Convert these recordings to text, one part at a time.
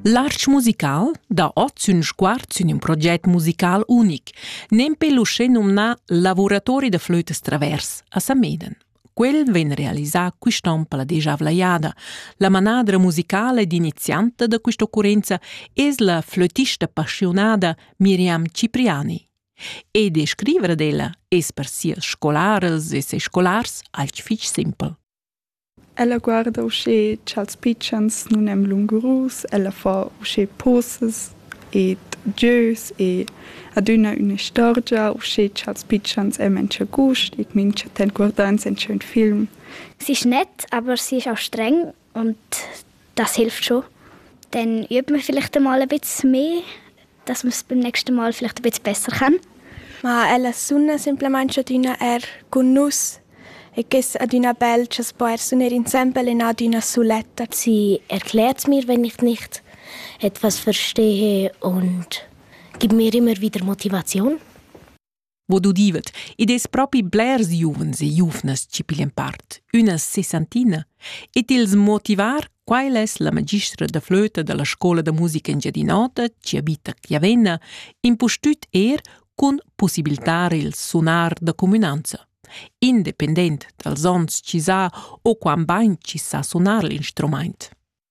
L'arch musical da ot sün sguard sün ün proget musical unic, nempe l'uschè nomnà Lavuratori da flötas travers a Sameden. Quel vegn realisà quist'on per la dejavla jada. La manadra musicala ed inizianta da questa occorrenza es la flötista passionada Miriam Cipriani. E descriver d'ella es per sias scolarels e ses scolars alch fich simpel. Ella guarda uschè cha'ls pitschens nun èn lungurus, ella fa uschè posas ed gieus e adüna ün'istorgia uschè cha'ls pitschens èn mincha gust e mincha temp guardà insembel ün film. Sie schnett, aber sie ist auch streng und Das hilft schon. Dann übt man vielleicht einmal ein bisschen mehr, dass man es beim nächsten Mal vielleicht ein bisschen besser kann. Ma ella sunna simplamain adüna er cun nus e ges adüna bel cha spo er suner insembel in adüna suletta. Sie erklärt mir, wenn ich nicht etwas verstehe und gibt mir immer wieder Motivation. Vod udivet, id es propi blers giuvens e giuvnas chi piglian part, üna sessantina, e tils motivar, quai es la magistra da flöta da la scoula da musica Engiadin'Ota, chi abita Chiavenna, impustüt eir cun pussibiltar il sunar da cumünanza. Independent dals ons chi s'ha o quant bain chi sa sunar l'instrumaint.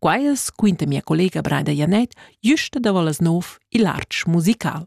Quai es, quinta mia collega Braida Janet, güsta davo las nov il artsch musical.